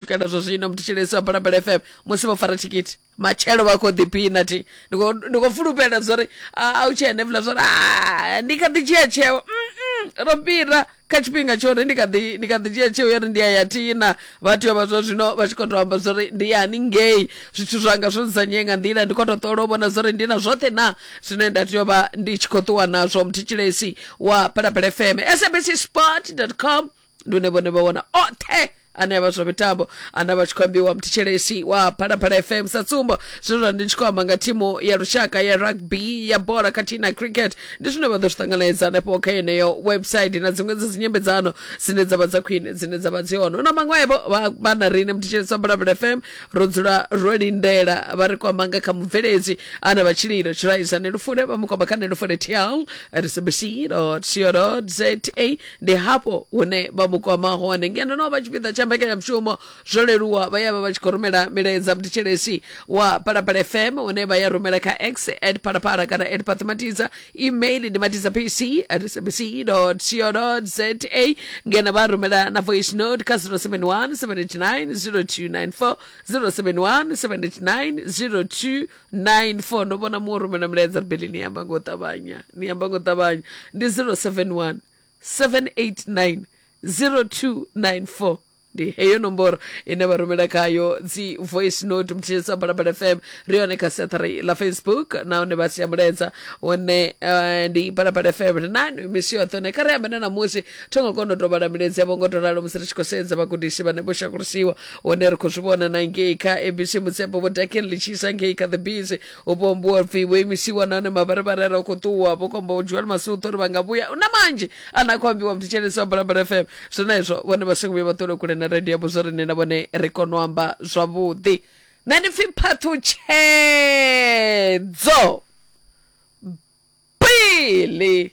swikela zwo zwino mthetshelesi wa balambela fm musi vho fara thikhithi matshelo vha khou ḓiphina thi ndi khou- ndi khou fulufhela zwa uri a a u tshee nevula zwa uri "Ah, ndi kha ḓi dzhia tsheo Mm-mm, ro fhira kha tshifhinga tsho uri ndi kha ḓi ndi kha ḓi dzhia tsheo ya uri ndi ya ya thina vhathu ya vha zwa zwino vha tshi khou tou amba zwa uri ndi yani ngei zwithu zwanga zwo nzanyee nga nḓila ndi khou tou ṱola u vhona zwa uri ndi na zwoṱhe na zwine nda tea u vha ndi tshi khou ṱuwa nazwo mthetshelesi wa balambela fm sabc sport com ndi une vhone vha wana oṱhe ane avha zwa mitambo ane avha tshi khou ambiwa mthetshelesi wa phalaphala fm sa tsumbo zwenezwa ndi tshi khou amba nga thimu ya lushaka ya rugby ya bola khathihi na cricket ndi zwine vha ḓo zwi ṱanganedza hanefho kha yeneyo website na dziṅwe dza dzinyambedzano dzine dzavha dza khwine dzine dzavha dzi hone na maṅwevho vha- vha na rine mthetshelesi wa phalaphala fm ro dzula ro lindela vha ri kwamba nga kha mubveledzi ana vha tshililo tshiraisa nelufule vha mu kwamba kha nelufule tl rsbc co za ndi hafho hune vha mu kwama hone ngeno no vha tshipiḓa tsha mbekanyamushumo zwo leluwa vha ya vha vha tshi khou rumela milaedza mutitshelesi wa phalaphala fm hune vha ya rumela kha x at phalaphala kana at pathimatiza email ndi matiza pc at sabc co za ngeno vha rumela na voice note kha 071 79 0294 071 79 02 nine four ndo vhona muṅwe rumela milaedza ribeli ni amba ngo ṱavhanya ni amba ngo ṱavhanya ndi zero seven one seven eight nine zero two nine four ndi heyo nomboro ine vha rumela khayo dzi voice note mutshilisa balabala fm ri hone kha seathari la facebook nahone vha sia mulaedza one uh, ndi balabala fm ri nani misi yoṱhe one kha ri ambe na namusi tho ngo kona u tovhala milaedzi yavho ngo to ralo musi ri tshi khou sedza vhagudisi vhane vho shakulisiwa hone ri khou zwi vhona na ngei kha abc mutsepo vho dakeni ḽi tshi isa ngei kha the bees u vho mbuwa pfi vho imisiwa nahone mavharivhari re khou ṱuwa vho komba joel masuṱo uri vha nga vhuya na manzhi ane a khou ambiwa mthetshelesi wa bulabula fm zwenezwo vhone vha songo vhuya vha ṱole kule na radio yavho zwo ri nṋe na vhone ri kone u amba zwavhuḓi nṋe ndi pfi phaṱhutshedzo bili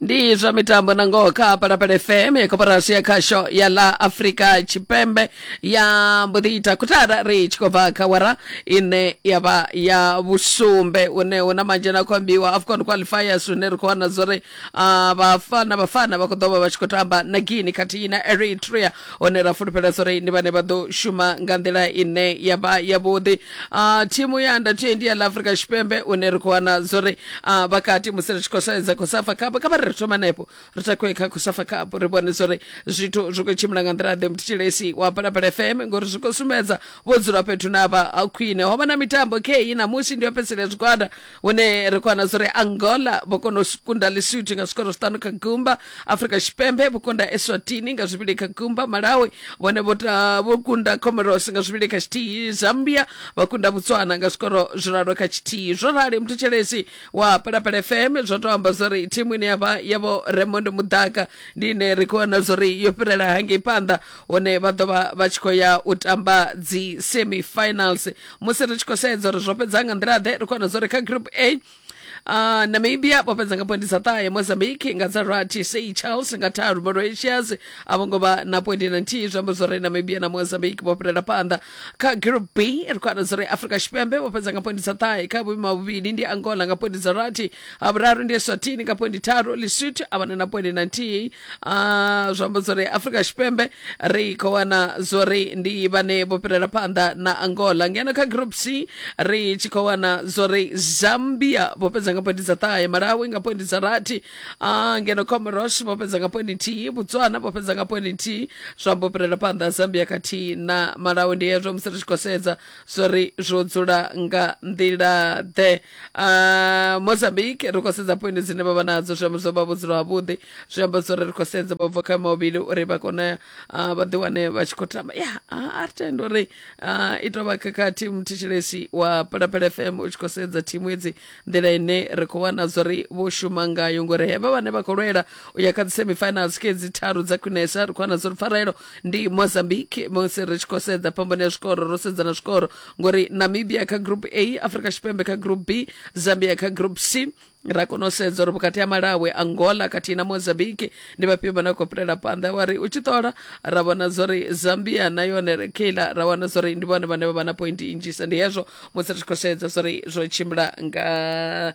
ndi zwa mitambo na ngoho kha palapala fm ya koporasi ya khasho ya la afrika tshipembe ya mbo ḓi ita khuthara ri tshi khou bva kha wara ine ya vha ya vhusumbe une hu na manzhe na khou ambiwa afcon qualifiers hune ri khou wana zwo ri ah, vhafana vhafana vha khou ḓo vha vha tshi khou tamba na guini khathihi na eritrea hone ra fulufhela zwa uri ndi vhane vha ḓo shuma nga nḓila ine ya vha yavhuḓi uh, thimu ya under 20 ya la africa tshipembe une ri khou wana zwa uri uh, vhakati musi ri tshi khou saedza khosafa kapo kha vha ri ri thoma nepo ri takuwe kha khosafa kapo ri vhone zwa uri zwithu zwi khou tshimbila nga nḓila ḓe mutshilesi wa balabala fm ngori zwi khou sumbedza vho dzula fhethu na vha khwine ho vha na mitambo kei namusi ndi yo fhedzisela zwigwada hune ri khou wana zwi angola vho kona u kunda lesotho nga zwikoro zwiṱanu kha gumba afrika tshipembe vho kunda eswatini nga zwivhili kha gumba malawi vhone vho ta- vho kunda comoros nga zwivhili kha tshithihi zambia vha kunda botswana nga zwikoro zwiraru kha tshithihi zwo rali muthutshelesi wa palapala fm zwo to amba zwori thimu ine yavha yavho raymond mudaka ndi ine ri khou wana zwori yo fhirela hangei phanḓa hone vha ḓo vha vha tshi khou ya u tamba dzi semifinals musi ri tshi khou sedza uri zwo fhedza nga nḓila ḓe ri khou zwa uri kha group a Uh, namibia vho fhedza nga poindi dza ṱahe mozambique nga dza rathi sei charles nga tharu mauritius a vho ngo vha na poindi na nthihi zwi amba zwori namibia na mozambique vho fhirela phanḓa kha group b ri khou ana zwori afrika tshipembe vho fhedza nga poindi dza ṱahe kha vhuimo ha vhuvhili ndi angola nga poindi dza rathi ha vhuraru ndi eswatini nga poindi tharu lesotho a vhana na poindi na nthihi Ah, zwi amba zwori afrika tshipembe ri khou wana zwori ndi vhane vho fhirela phanḓa na angola ngeno kha group c ri tshi khou wana zwori zambia vho fhedza nga pointi dza ṱahe malawi nga pointi dza rathi ah, ngeno comoros vho fhedza nga pointi nthihi botswana vho fhedza nga pointi nthihi zwa amba u fhirela phanḓa zambia khathihi na malawi ndi hezwo musi ri tshi khou sedza zwori zwo dzula nga nḓila ḓe uh, mozambique ri khou sedza poindi dzine vha vha nadzo zwi amba zwo vha vhudzulo havhuḓi zwi amba zwori ri khou sedza vha bva kha mavhili uri vha kone uh, vha ḓi wane vha tshi khou tamba ya yeah, a ri tende uri uh, i tou vha khakhathi muthetshelesi wa phalaphala fm u tshi khou sedza thimu edzi nḓila ine ri khou wana zwori vho shuma ngayo ngori hevha vhane vha khou lwela u ya kha dzi semifinals ke dzi tharu dza khwinesa ri khou wana zwori pfarelo ndi mozambique musi ri tshi khou sedza phambano ya zwikoro ro sedza na zwikoro ngori namibia kha group a afrika tshipembe kha group b zambia kha group c ra kona u sedza uri vhukati ha malawi angola khathihi na mozambique ndi vhafhio vha na khou fhirela phanḓa wa ri u tshi ṱola ra vhona zwa uri zambia na yone re keila ra wana zwa uri ndi vhone vhane vha vha na point nnzhisa ndi hezwo musi ri tshi khou sedza zwa uri zwo tshimbila nga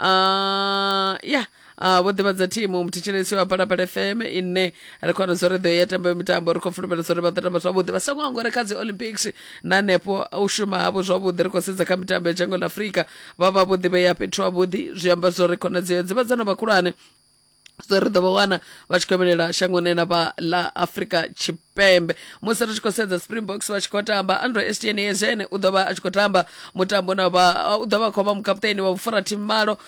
uh, ya Uh, vho ḓivhadza thimu muthetshelesi wa palapala fm ine ri khou wana zwo ri ḓo ya tamba mitambo ri khou fulufhela zwo ri vha ḓo tamba zwavhuḓi vha songo angore kha dzi olympics na hanefho u shuma havho zwavhuḓi ri khou sedza kha mitambo ya dzhango ḽa afurika vha vha vho ḓivhea fhethu havhuḓi zwi amba zwo ri khonadzeo dzivhadzano vhakhulwane so ri ḓo vha wana vha tshi khou vhelela shangoni ḽa ḽa afrika tshipembe musi ri tshi khou sedza springboks vha tshi khou tamba andro stn ezene u ḓo vha a tshi khou tamba mutambo na vha u ḓo vha khou vha mukaputeni wa vhufura thimu malo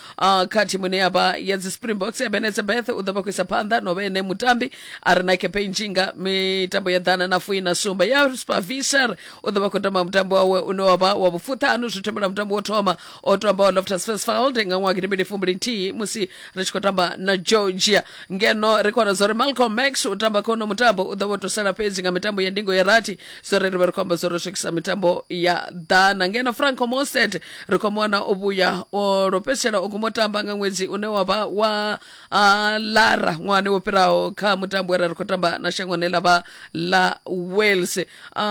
kha thimu ine ya vha ya dzi springboks ebenetse beth u ḓo vha khou isa phanḓa no vha ene mutambi a re na campaign tshinga mitambo ya ḓana na fuina sumba ya spavisher u ḓo vha khou tamba mutambo wawe une wa vha wa vhufuṱhanu zwi thembela mutambo wo thoma o tamba wa loftus fesfald nga ṅwaha gidi mbili fumbili nthihi musi ri tshi khou tamba na georgia ngeno ri kona zwa uri malcolm max u tamba khono mutambo u ḓo vho tusela fhedzi nga mitambo ya ndingo ya rathi zwo ri ri vhe ri khou amba zwo ri swikisa mitambo ya ḓana ngeno franco mosted ri khou muwana o vhuya o lwo fhedzisela o guma u tamba nga ṅwedzi une wa vha wa a lara ṅwahani wo fhiraho kha mutambo we ra ri khou tamba na shangoni ḽa vha ḽa wales a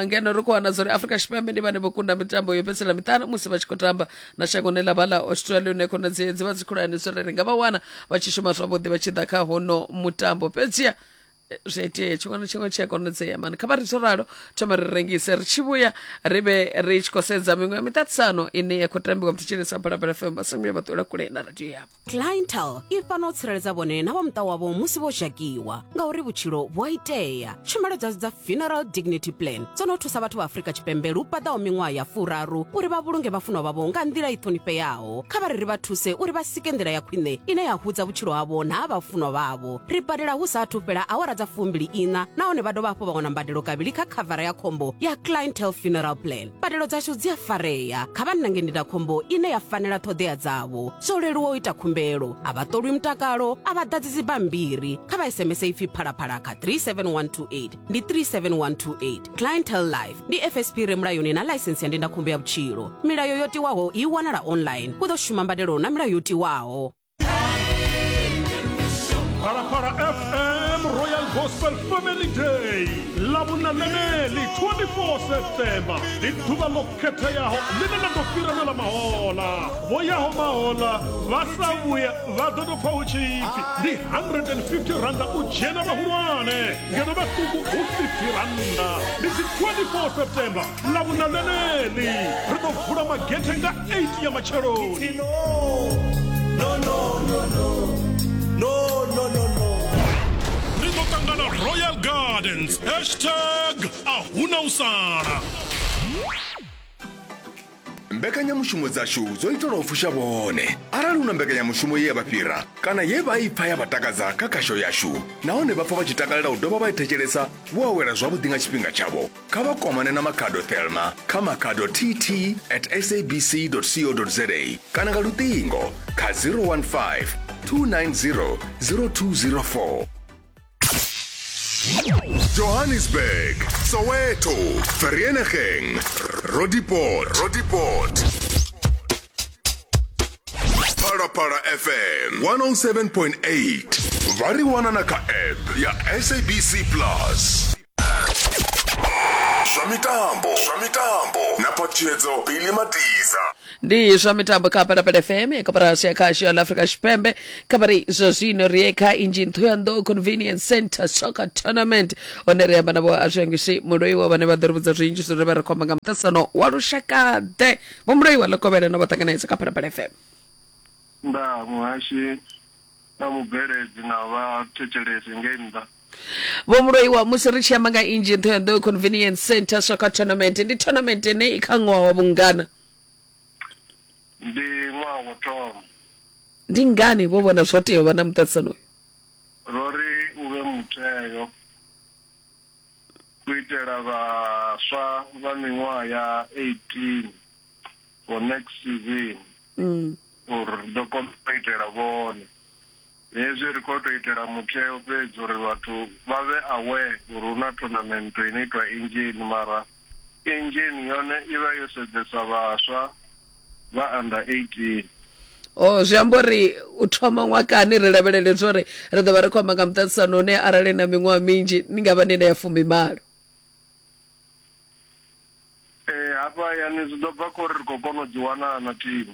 ngeno ri khou wana zwa uri afrika tshipembe ndi vhane vho kunda mitambo yo fhedzisela miṱanu musi vha tshi khou tamba na shangoni ḽa vha ḽa australia une khonadzeo dzi vha dzi khulwane zwo ri ri nga vha wana vha tshi shuma zwavhuḓi vha tshi ḓa kha hono mutambo fhedziha zwi itea tshiṅwe na tshiṅwe tshi a konadzea mani kha vha ri ralo thoma ri rengise ri tshi vhuya ri vhe ri tshi khou sedza miṅwe ya miṱaṱisano ine ya khou tambiwa mutshitshilisa balabala fm vha songo ya vha ṱula kule na radio yavho clientel i fana u tsireledza vhone na vha muṱa wavho musi vho zhakiwa ngauri vhutshilo vhu a itea tshumelo dza dza funeral dignity plan dzo no thusa vhathu vha afrika tshipembe lu paḓaho miṅwaha ya furaru uri vha vhulunge vhafunwa vhavho nga nḓila i ṱhonifheaho kha vha ri ri vha thuse uri vha sike nḓila ya khwine ine ya hudza vhutshilo havho na ha vhafunwa vhavho ri badela hu sa athu fhela awara dza fumbili iṋa nahone vha dovha hafhu vha wana mbadelo kavhili kha khavara ya khombo ya clientele funeral plan mbadelo dzashu dzi a farea kha vha nnange ndindakhombo ine ya fanela ṱhoḓea dzavho zwo leluwa u ita khumbelo a vha ṱolwi mutakalo a vha ḓadzi dzibammbiri kha vha sms ipfi phalaphala kha 37128 ndi 37128 clientele life ndi fsp re mulayoni na ḽaisensi ya ndindakhombo ya vhutshilo milayo yo tiwaho i wanala online hu ḓo shuma mbadelo na milayo yo tiwaho Phalaphala FM Royal Gospel Family Day lavhunananeli 24 septemba ndi ḓuvha ḽo khetheaho ḽine ḽa ḓo fhirelwela mahola vho yaho mahola vha sa vhuya vha ḓo tou pfa hu tshipfi ndi 150 randa u dzhena vhahulwane ngeno vhaṱuku hu 50 randa ndi dzi 24 septemba ḽavhuna ḽeneḽi ri ḓo vula magethe nga 8 ya matsheloni ri ḓo ṱangana royal gardens hashtag a huna u sala mbekanyamushumo dzashu dzo itelwa u fusha vhone arali hu na mbekanyamushumo ye ya vha fhira kana ye vha i pfa ya vha takadza kha khasho yashu nahone vha pfa vha tshi takalela u dovha vha i thetshelesa vho awela zwavhuḓi nga tshifhinga tshavho kha vha kwamane na makhado thelma kha makhado tt at sabc co za kana nga luṱingo kha 015 290 0204 johannesburg soweto vereeniging rodiport rodiport phalaphala fm 107.8 vha ri wana na kha app ya sabc plus zwa mitambo zwa mitambo na patshedzo pili matiza ndi zwa mitambo kha phalaphala fm ya koporasi ya khasho ya la afrika tshipembe khabari zwa zwino ri ye kha injini thoyandou convenience center soccer tournament hone ri amba navho azwiangisi muloiwa vhane vha ḓo ri vhudza zwinzhi zwine vha ri khomba nga muṱasano wa lushakaḓe vho muloiwa ḽo kovhela no vha ṱanganedza kha phalaphala fm nda muhashi na mubveledzi na vhathetshelesi ngei nnḓa vho muloiwa musi ri tshi amba nga inzhi nṱha ya nḓoyo convenience center soccer tournament ndi tournament ine i kha ṅwaha wa vhungana ndi ṅwaha wo thoma ndi ngani vho vhona zwo tea u vha na muṱaṱisano uyu ro ri u vhe mutheo u itela vhaswa vha miṅwaha ya 18 for next season mm. uri ri ḓo kona u itela vhone Hezwi ri khou tou itela mutheo fhedzi uri vhathu vha vhe aware uri hu na thonamennto ino itwa Engen mara Engen yone i vha yo sedzesa vhaswa vha under 18. Oh, zwi amba uri u thoma ṅwakani ri lavhelele zwa uri ri ḓo vha ri khou amba nga muṱaṱisano une arali na miṅwaha minzhi ni nga vha ni na ya fumimalo. Ee, hafha hayani zwi ḓo bva kha uri ri khou kona u ḓiwana na thimu.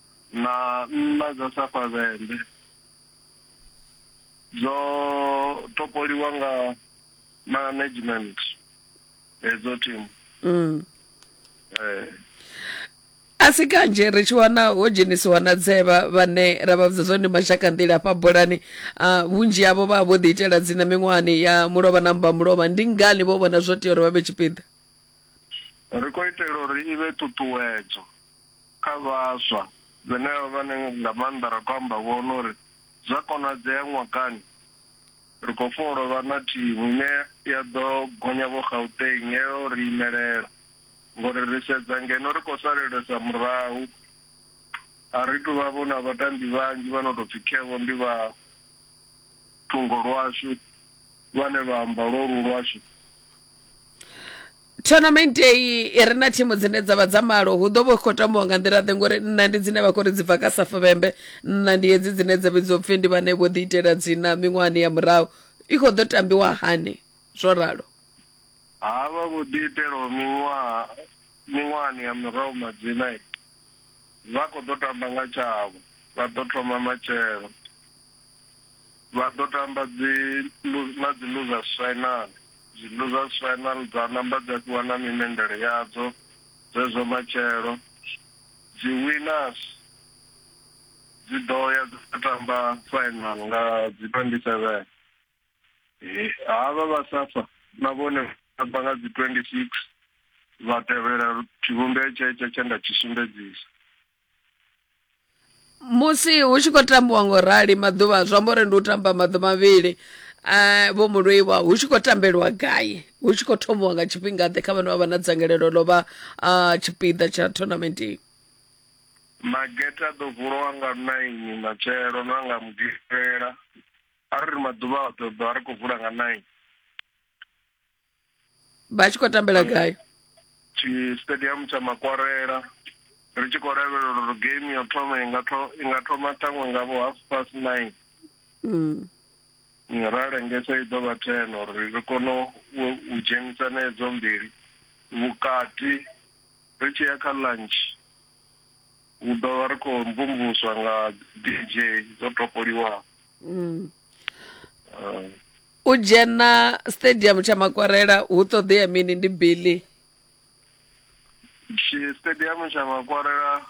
na nṋa dza safhavhende dzo topoliwa nga management hedzo team mm. eh. a si kanzhi ri tshi wana ho dzhenisiwa na dzevha vhane ra vha vhudza zwone mashaka nḓila hafha bolani uh, vhunzhi havho vha vho ḓi itela dzina miṅwahani ya mulovha na mba mulovha ndi ngani vho vhona zwo tea uri vha vhe tshipiḓa ri khou itela uri i vhe ṱuṱuwedzo Kha vhaswa, vhenevha vhane nga maanḓa ra khou amba vho, no ri, Zwa konadzea ṅwakani ri khou funa u tou vha na thimu ine ya ḓo gonya vho Gauteng ya yo ri imelela ngori ri sedza ngeno ri khou salelesa murahu, a ri tou vha-vho na vhatambi vhanzhi vha no tou pfi khe-vho ndi vha thungo lwashu vhane vha amba lwolu lwashu. Tournament eyi i re na thimu dzine dza vha dza malo hu ḓo vha hu khou tambiwa nga nḓila ḓe ngori nṋa ndi dzine vha khou ri dzi bva kha safuvhembe nṋa ndi hedzi dzine dza vhidziwa upfhi ndi vhane vho ḓi itela dzina miṅwahani ya murahu i khou ḓo tambiwa hani zwo ralo havha vho ḓi itelaho miṅwaha miṅwahani ya murahu madzina vha khou ḓo tamba nga tshavho vha ḓo thoma matshelo Vha ḓo tamba dzi na dzi Losers Final. Dzi Losers Final dza namba dza fhiwa na mimendele yadzo zwezwo matshelo. Dzi Winners dzi ḓo ya dza tamba Final nga dzi 27. Havha vha Safa na vhone vha tamba nga dzi 26 vha tevhela tshivhumbeo tshetsho tshe nda tshi sumbedzisa. musi hu tshi khou tambiwa ngo rali maḓuvha zwi amba uri ndi u tamba maḓuvha mavhili um vho mulwiwa hu tshi khou tambelwa gai hu tshi khou thomiwa nga tshifhinga ḓe kha vhane vha vha na dzangalelo ḽo vha um tshipiḓa tsha tournament iyi magete a ḓo vuliwa nga naini matshelo na nga mugivhela a ri ri maḓuvha a ḓo ḓo a ri khou vula nga naini vha tshi khou tambela gai tshi stadium tsha makwarela ri tshi khou lavhelela uri game yo thoma i nga tho- i nga thoma ṱhaṅwe nga vho half past nine Mm. Mm, ra lengesa i ḓo vha ten uri ri kone u u dzhenisa na edzo mbili vhukati ri tshi ya kha lunch hu ḓo vha ri khou mvumvuswa nga dj dzo topoliwaho Mm. Ah, u dzhena stadium tsha makwarela hu ṱoḓea mini ndi billy tshi- stadium tsha makwarela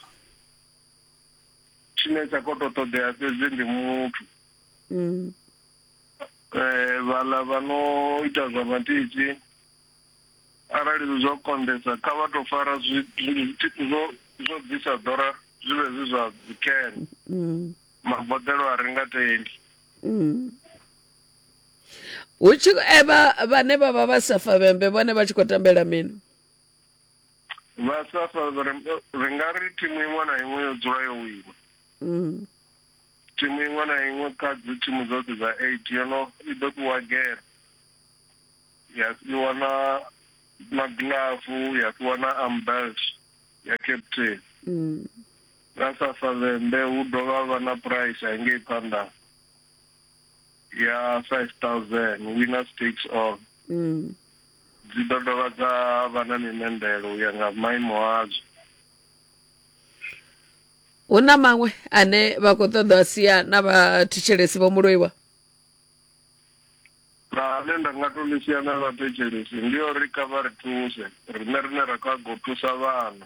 tshine tsha khou tou ṱoḓea fhedzi ndi muthu mm. eh vhala vha no ita zwa matiti arali zwi zwo konḓesa kha vha to fara zwi- zwi- zwo zwo bvisa ḓora zwi vhe zwi zwa dzikene Mm. maboḓelo a ri nga tendi mm. hu tshi e vha vhane vha vha vha safa vhembe vhone vha tshi khou tambela mini vha safa ri nga ri thimu iṅwe na iṅwe yo dzula yo wina mm. thimu iṅwe na iṅwe kha dzi thimu dzoṱhe dza eight yo no i ḓo fhiwa gere ya fhiwa na magilafu ya fhiwa na ambelt ya captain mm. Nga Ṱhafaḽembe hu dovha ha vha na phuraisa ya ngei phanḓa ya 5000, Winners Takes All. Dzi ḓo dovha dza vha na mimendelo u ya nga maimo adzo. Hu na maṅwe ane vha khou ṱoḓa a sia na vha thetshelesi vho muloiwa? Na ane nda nga to ḽi sia na vha thetshelesi ndi uri kha vha ri thuse riṋe rine ra khou a go thusa vhana.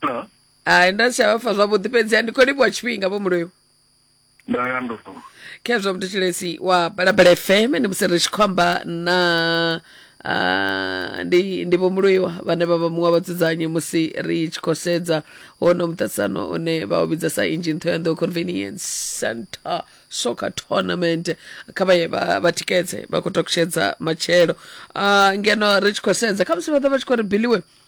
Hello? hai nda si tsha vha pfa zwavhuḓi fhedziha ndi khou livhuwa tshifhinga vho muloyo Ndo ya ndo. khezwo mthetshelesi wa balabala fm ndi musi ri tshi khou amba na ah, ndi ndi vhomuluiwa vhane vha vha muṅwe wa vhadzudzanyi musi ri tshi khou sedza hono muṱaṱisano une vha u vhidza sa engine thoyandou convenience center soccer tournament kha vha ye vha vha tikedze vha khou takutshedza matshelo Ah, ngeno ri tshi khou sedza khamusi vha ḓa vha tshi khou ri biliwe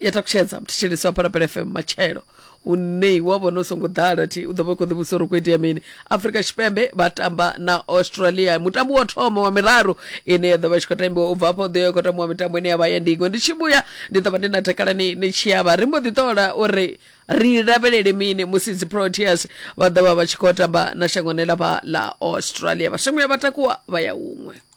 ya takutshedza mthetshelesi wa phalaphala fm matshelo une wa vhona u songo ḓala thi u ḓo vha u khou ḓivhusa uri u khou itea mini afrika tshipembe vha tamba na australia mutambo wa thoma wa miraru ine ya ḓo vha tshi khou tambiwa u bva afho ḓo ya khou tambiwa mitambo ine ya vha ya ndingo ndi tshi vhuya ndi ḓo vha ndi na takala ni ni tshi yavha ri mbo ḓi ṱola uri ri lavhelele mini musi dzi proteas vha ḓo vha vha tshi khou tamba na shangoni ḽa vha ḽa australia vhashangoni vha takuwa vha ya huṅwe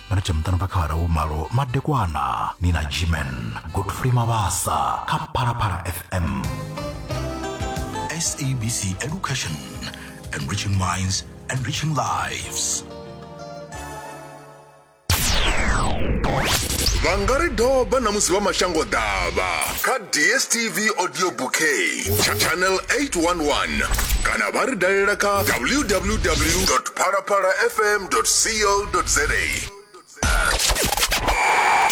mari tsha muṱanu phakhara wo malo madekwana ni na gman godfrey mabasa kha phalaphala fm sabc education enriching minds enriching lives vha nga ri doba na musi vha mashango ḓavha kha dstv audio bouquet cha- channel 811 kana vha ri dalela kha www phalaphala fm co za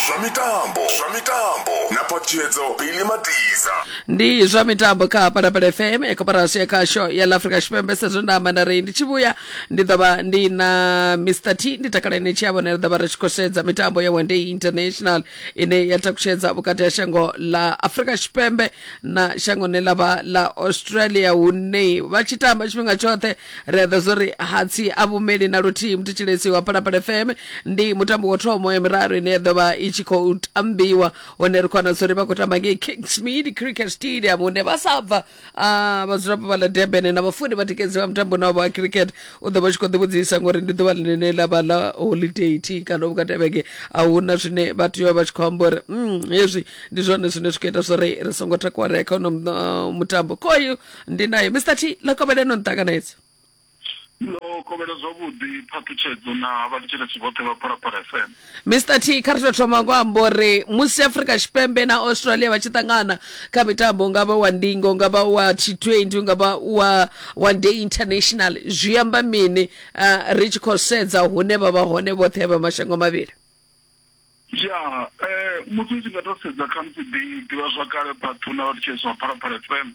zwa mitambo zwa mitambo na phaṱhuyedzo bili matiza ndi zwa mitambo kha phalaphala fm ya koporasi ya khasho ya la afrika tshipembe sezwo nda amba na rei ndi tshi vhuya ndi ḓo vha ndi na mr t ndi takala ine tshi ya vhona ri ḓo vha ri tshi khou sedza mitambo ya one day international ine ya takutshedza vhukati ha shango la afrika tshipembe na shango ne ḽa vha ḽa australia hune vha tshi tamba tshifhinga tshoṱhe ri a ḓa zwo ri hatsi a vhumeli na luthihi muthetsheledziwa wa phalaphala fm ndi mutambo wa thomo ya miraru ine ya ḓo vha i tshi khou tambiwa hone ri khou wana zwo ri vha khou tamba ngei kingsmead cricket stadium hune vha sa bva ah, vhadzulapo vha ḽa durban na vhafuni vha tikedzi vha mutambo na wa cricket u ḓo vha tshi khou ḓi vhudzisa ngori ndi ḓuvha ḽine ḽa vha ḽa holiday thi kana vhukati ha vhege a hu na zwine vha tea u vha vha tshi khou amba uri mm, hezwi ndi zwone zwine zwi khou ita zwo ri ri songo takuwa ri ya kha hono uh, mutambo khoyu ndi nayo mr t ḽa kovhele no nṱanganedza ndo kovhela zwavhuḓi phaṱhutshedzo na vhatshitshitshi vhoṱhe vha phalaphala fm mr t kha ri to thoma ngo amba uri musi afrika tshipembe na australia vha tshi ṱangana kha mitambo nga vha wa ndingo nga vha wa t20 nga vha wa wa day international zwi amba mini uh, ri tshi khou sedza hune vha vha hone vhoṱhe vha mashango mavhili ya um muthu u tshi nga to sedza khamusi ḓi ḓivhazwakale vhathu na vhathu tshezwa phalaphala fm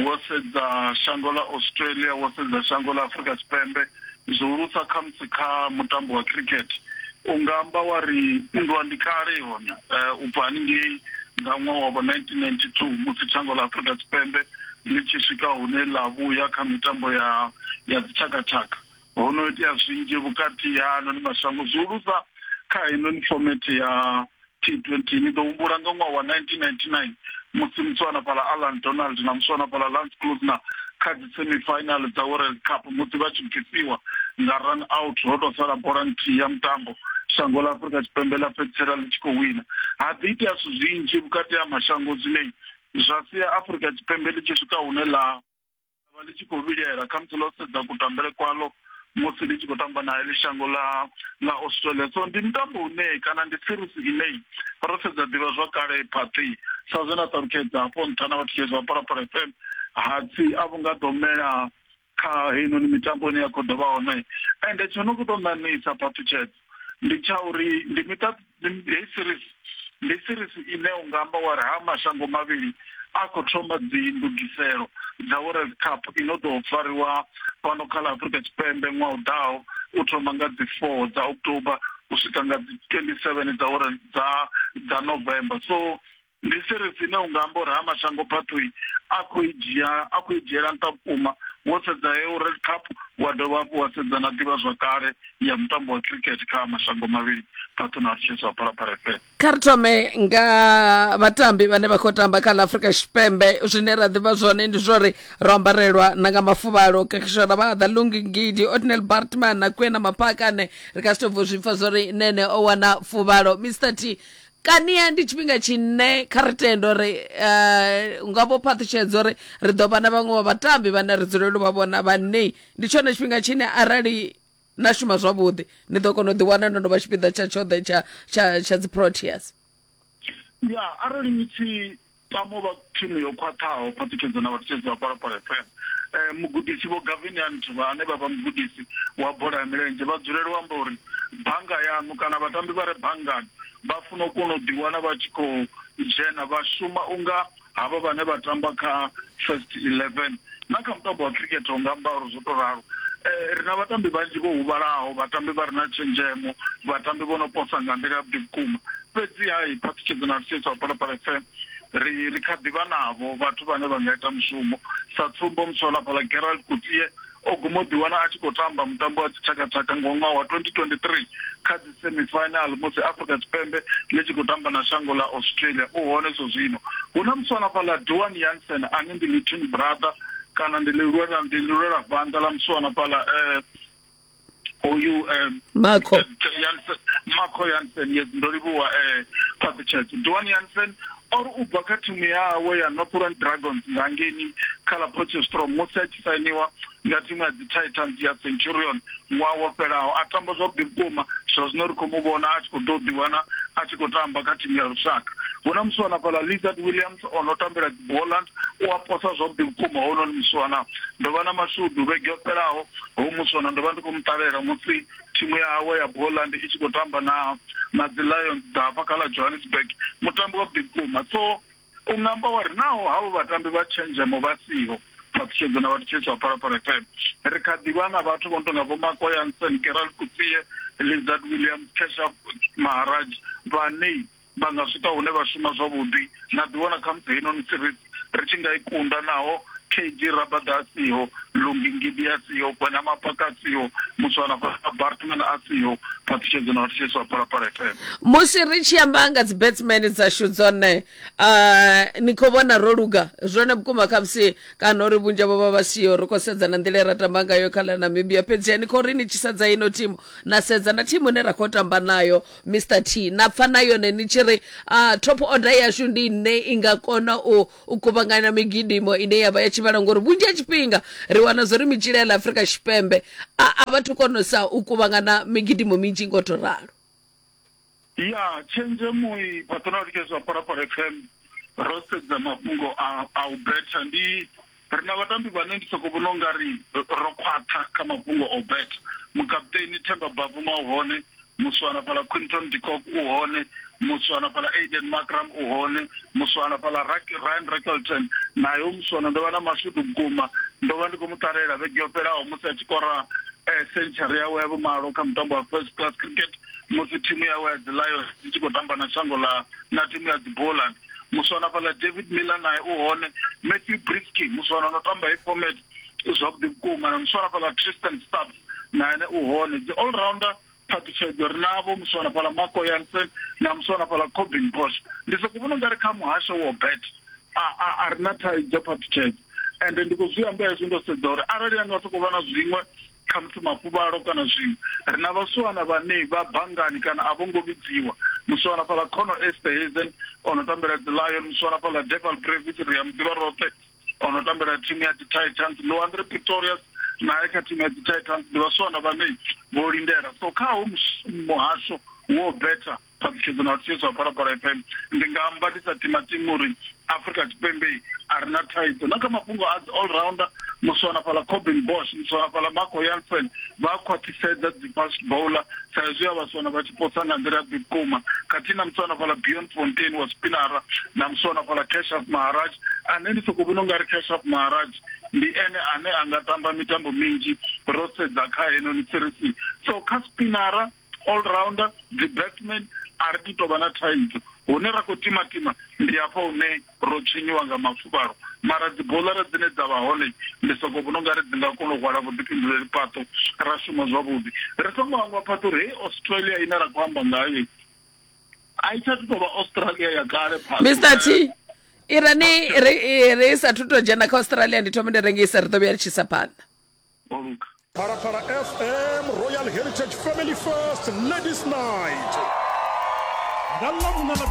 wo sedza shango ḽa australia wo sedza shango ḽa afrika tshipembe zwihulusa khamusi kha mutambo wa cricket u nga amba wa ri nndwa ndi kale hone um u bva haningei nga ṅwaha wavho nineteen ninety two musi shango ḽa afrika tshipembe ḽi tshi swika hune ḽa vhuya kha mitambo ya ya dzitshakatshaka Ho no itea zwinzhi vhukati ha ano ni mashango zwihulusa kha heinoni fomethe ya T20. Ni ḓo humbula nga ṅwaha wa 1999 musi muswana fhala Allan Donald na muswana fhala Lance Klusener kha dzi semi final dza World Cup musi vha tshi bvisiwa nga run out ho tou sala bola nthihi ya mutambo shango ḽa Afrika Tshipembe ḽa fhedzisela ḽi tshi khou wina. Ha ḓi itea zwithu zwinzhi vhukati ha mashango zwine zwa sia Afrika Tshipembe ḽi tshi swika hune ḽa vha ḽi tshi khou vhilela khamusi ḽo sedza kutambele kwalo musi ndi tshi khou tamba na heḽi shango ḽa ḽa australia so ndi mutambo une kana ndi series ine ro sedza ḓivha zwa kale phaṱi sa zwe na ṱalutshedza hafho nṱha na vhathetshelesi vha phalaphala fm hatsi a vhu nga ḓo mela kha heinoni mitambo ine ya khou ḓo vha hone ende tsho no khou tou ṋaṋisa phaṱutshedza ndi tsha uri ndi miṱa hei series ndi series ine u nga amba wa ri ha mashango mavhili a khou thoma dzi ndugiselo dza world cup i no ḓo fariwa fhano kha ḽa afurika tshipembe ṅwaha u ḓaho u thoma nga dzi four dza october u swika nga dzi twenty seven dza world dza dza november so Ndi series ine unga amba uri ha mashango phaṱhoi a khou i dzhia a khou i dzhiela nṱha vhukuma wo sedza heyo World Cup wa dovha hafhu wa sedza na ḓivhazwakale ya mutambo wa cricket kha mashango mavhili phaṱhuni a Chiefs wa Phalaphala FM. Kha ri thome nga vhatambi vhane vha khou tamba kha ḽa Afrika Tshipembe zwine ra ḓivha zwone ndi zwa uri ro ambarelwa na nga mafuvhalo kakishora vha ḓa Lungi Ngidi Otnel Bartman na Kwena Mapakane ri ka si tou bvo zwi pfa zwa uri Nene o wana fuvhalo Mr T kania ndi tshifhinga tshine kha ri tende uri um nga vho phaṱhutshedzo uri ri ḓo vha na vhaṅwe vha vhatambi vhane ri dzulele u vha vhona vhane ndi tshone tshifhinga tshine arali na shuma zwavhuḓi ni ḓo kona u ḓiwana no no vha tshipiḓa tsha tshoṱhe tsha tsha tsha dzi proteas ya arali ni tshi Tamo vha thimu yo khwaṱhaho, phaṱhutshedzo na vhathutshedzi vha Phalaphala FM. Mugudisi Vho Gavinia Ntuvha ane vha vha mugudisi wa bola ya milenzhe vha dzulela u amba uri bannga yaṋu kana vhatambi vha re banngani vha funa u kona u ḓiwana vha tshi khou dzhena vha shuma unga havha vhane vha tamba kha First 11. na kha mutambo wa khirikhethe u nga amba uri zwo tou ralo um ri na vhatambi vhanzhi vho huvhalaho vhatambi vha re na tshenzhemo vhatambi vho no posa nga nḓila yavhuḓi vhukuma fhedzi hai phaṱhutshedzo na lusesa wa phalaphala fm ri ri kha ḓivha navho vhathu vhane vha nga ita mushumo sa tsumbo musola fhala gerald kutie o guma u ḓiwana a tshi khou tamba mutambo wa dzitshakatshaka nga ṅwaha wa 2023 kha semifinal musi Afrika Tshipembe ḽi tshi khou tamba na shango ḽa Australia u hone zwo zwino. Hu na muswana fhaḽa Duan Jansen ane ndi little brother kana ndi ḽi lwela ndi ḽi lwela vhanḓa ḽa muswana fhaḽa eh hoyu eh Makho Jansen Makho Jansen yes ndo livhuwa eh Patrick Duan Jansen or u bva kha thimu yawe ya Northern Dragons nga ngeni kha ḽa Potchefstroom musi a tshi sainiwa nga thimu ya dzi Titans ya Centurion ṅwaha wo fhelaho. A tamba zwavhuḓi vhukuma, zwa zwino ri khou mu vhona a tshi khou ḓo ḓiwana a tshi khou tamba kha thimu ya lushaka. Hu na musiwana fhaḽa Lizard Williams o no tambela dzi Boland, u a posa zwavhuḓi vhukuma hounoni musiwana. Ndo vha na mashudu vhege yo fhelaho, hoyu musiwana ndo vha ndi khou mu ṱalela musi thimu yawe ya Boland i tshi khou tamba na na dzi Lions dza hafha kha ḽa Johannesburg, mutambi wavhuḓi vhukuma so. U nga amba wa ri, Naho havho vhatambi vha tshenzhemo vha siho, Phaṱhutshedzo na Vhathetshelesi vha Phalaphala FM, ri kha ḓi vha na vhathu vho no tou nga Vho Marco Jansen, Gerald Coetzee, Lizard Williams, Keshav Maharaj vhane vha nga swika hune vha shuma zwavhuḓi na ḓiwana khamusi heinoni series ri tshi nga i kunda naho KG Rabada a siho. Lumbi Ngidi a siho, Gwena Mapaka a siho, Muswana Bartman a siho, Patricia Dzino a thetsheleswa Phalaphala FM. musi ri tshi amba nga dzi batsman dzashu dzone uh, ni khou vhona ro luga zwone vhukuma khamusi kana uri vhunzhi havho vha vha siho ri khou sedza na nḓila ye ra tamba ngayo kha ḽa namibia fhedziha ni khou ri ni tshi sedza ino thimu na sedza na thimu ine ra khou tamba nayo mr t na pfa na yone ni tshi ri uh, top order yashu ndi ine i nga kona u, u kuvhanganya migidimo ine yavha ya tshivhala ngori vhunzhi ha tshifhinga ri wana zwori mitshila ya ḽa afurika tshipembe a a vhathu konesa u kuvhangana migidimo minzhi ngo to ralo ya tshenzhemo i patronati ke zwa parapara fm ro sedza mafhungo a a u betha ndi ri na vhatambi vhane ndi soko vhona ungari ro khwaṱha kha mafhungo o betha mukaputeni themba bavuma hone Muswana fhaḽa Quinton de Kock u hone, muswana fhaḽa Aiden Markram u hone, muswana fhaḽa Ryan Rickelton nae u muswana. Ndo vha na mashudu vhukuma, ndo vha ndi khou mu ṱalela vhege yo fhelaho musi a tshi kora sentshari yawe ya vhumalo kha mutambo wa First Class Cricket musi thimu yawe ya dzi Lions i tshi khou tamba na shango ḽa na thimu ya dzi Boland. Muswana fhaḽa David Miller nae u hone, Matthew Breetzke muswana o no tamba heyi format i zwavhuḓi vhukuma na muswana fhala Tristan Stab na ene u hone dzi all rounder phaṱhutshedzo ri navho muswana fhala Marco Jansen na muswana fhala Cobin Bosch ndi soko vhona ungari kha muhasho wo bet a ri na thaidzo phaṱhutshedzo ende ndi khou zwi amba hezwi ndo sedza uri arali anga sokou vha na zwiṅwe khamusi mafuvhalo kana zwiṅwe ri na vhasiwana vhane vha bangani kana a vho ngo vhidziwa musiwana fhala khono esterhazen o no tambela dzi lion musiwana fhala deval brevis ri ya muḓivha roṱhe o no tambela thimu ya tititans loandre pretorius naye kha thimu ya tititans ndi vhasiwana vhane vho lindela so kha ho muhasho wo betha ṱhalutshedzo na vhathiso ha phalaphala fm ndi nga amba ndi sa timatima uri afrika tshipembe a ri na thaidzo na kha mafhungo a dzi all rounder muswana fhala cobin bosh muswana fhala marco yansen vha khwaṱhisedza dzi fast bowler sa izwi a vhaswana vha Potsa nga nḓila yavhuḓi vhukuma khathihi na musiwana fhaḽa Bionfontein wa Spinara na musiwana fhaḽa Keshav Maharaj, ane ndi sokou vhona u nga ri Keshav Maharaj ndi ene ane a nga tamba mitambo minzhi ro sedza kha heinoni sirisi. So kha Spinara, all-rounder, dzi-batsman a ri tu tou vha na thaidzo. Hune ra khou timatima ndi hafha hune. ro tswinyiwa nga mafuvhalo, mara dziboḽara dzine dza vha hone ndi soko vhona ungari dzi nga kona u hwala vhuḓifhinduleli fhaṱo ra shuma zwavhuḓi. Ri songo hangwa fhaṱa uri heyi Australia ine ra khou amba ngayo a i tsha thu tou vha Australia ya kale phaṱo. Mr T i re ni ri ri sa thu tou dzhena kha Australia ndi thome ndi rengise ri ḓo vhuya ri tshi sa phanḓa. Phalaphala FM Royal Heritage Family First Ladies Night nga ḽa vhuna ḽa